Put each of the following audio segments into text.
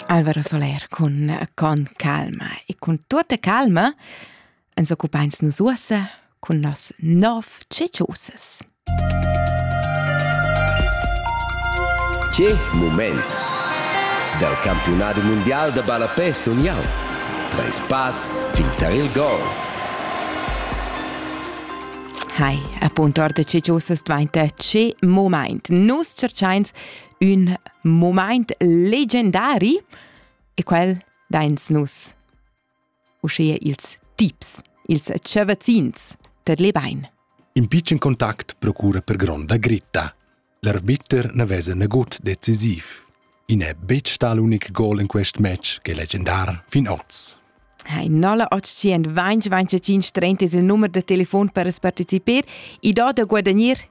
Alvaro Soler cun con calma e cun tuota calma ens occupains nus uossa cun nos nov ceciosas. Che moment! Dal campionat mundial da ballapè sun jau. Treis pass fin tar il gol. Hai, appunto, orda ceciosas dvainta ce moment. Nus cerchains ün momaint legendari e quel dains nus. Uschea ils tips, ils chevazzins, tet le bain. In pitschen contact procura per gronda gritta. L'arbiter ne vesa nagut decisiv. I n'è betg sta l'unic gol in quest match che legendar fin oz. Ein 925 25 il numero de telefon per partecipare e do da guadagnare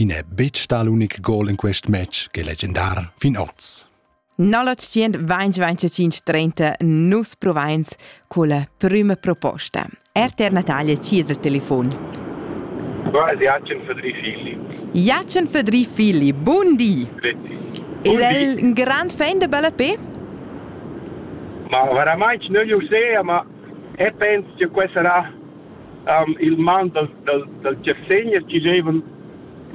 I n'è betg stà l'unic gol en quest match ch'è legendar fin oz. 1925-30 nus provains culla prüma proposta. RTR Natalia ci es il telefon. Qua è Jacen Fedri Filli. Jacen Fedri Filli, bun di! Il è un grand fan de Bella P? Ma veramente non lo so, ma e penso che questo sarà il man dal dal dal tschessegner chi giovan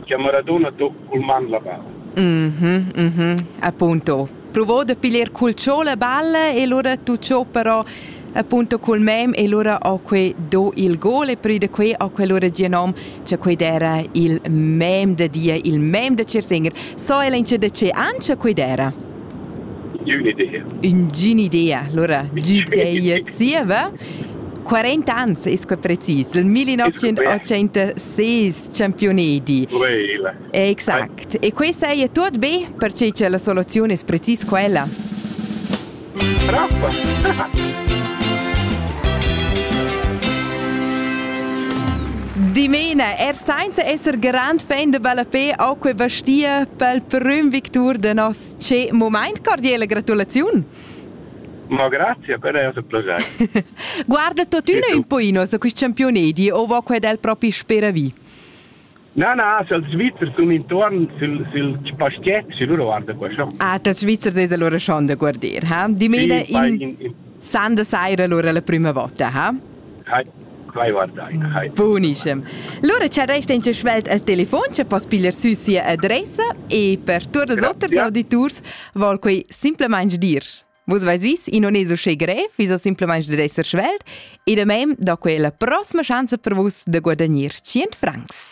cha Maradona do cul man la balla. Mhm, mhm, appunto. Provò da piglier cul cho la balla e lura tu cho però appunto cul mem e lura ho que do il gol e prü da que ho que lura gia nom cha quei era il mem da dia, il mem da Cersinger. So ella ince da ce ancha quei era? Un'idea. Ung'in'idea, allora gideia zieva. 40 ans es que precis, il 1986 Championedi. Exact. E questa è tot be perché che la soluzione es precis quella. Bravo. Dimena, er senza esser grand fan de Ballapé, auch que bastia pel prüm victur de nos ce moment cordiale gratulaziun. Ma grazia per eir plaschair. Guarda tuottüna ün poino su quist championedi o vo quel del propi speravì? Na, na, sül Svizzer sun intuorn sül, sül paschiet, sü lura guarda quaschà. Ah, tats Svizzers es allura schon da guarder, ha? Dimena sì, in, in... sanda saira lura la prüma vota, ha? Buonischem. Lura ci resta in svelt al telefon che poss pigliar sü sia adressa e per tuot els oters auditurs vol quei simplamaing dir. Vus vais vis, i non es uschè grev, vis o simplamaing dad esser svelt e da mem do quella prossima schanza per vus da guadagnir 100 francs.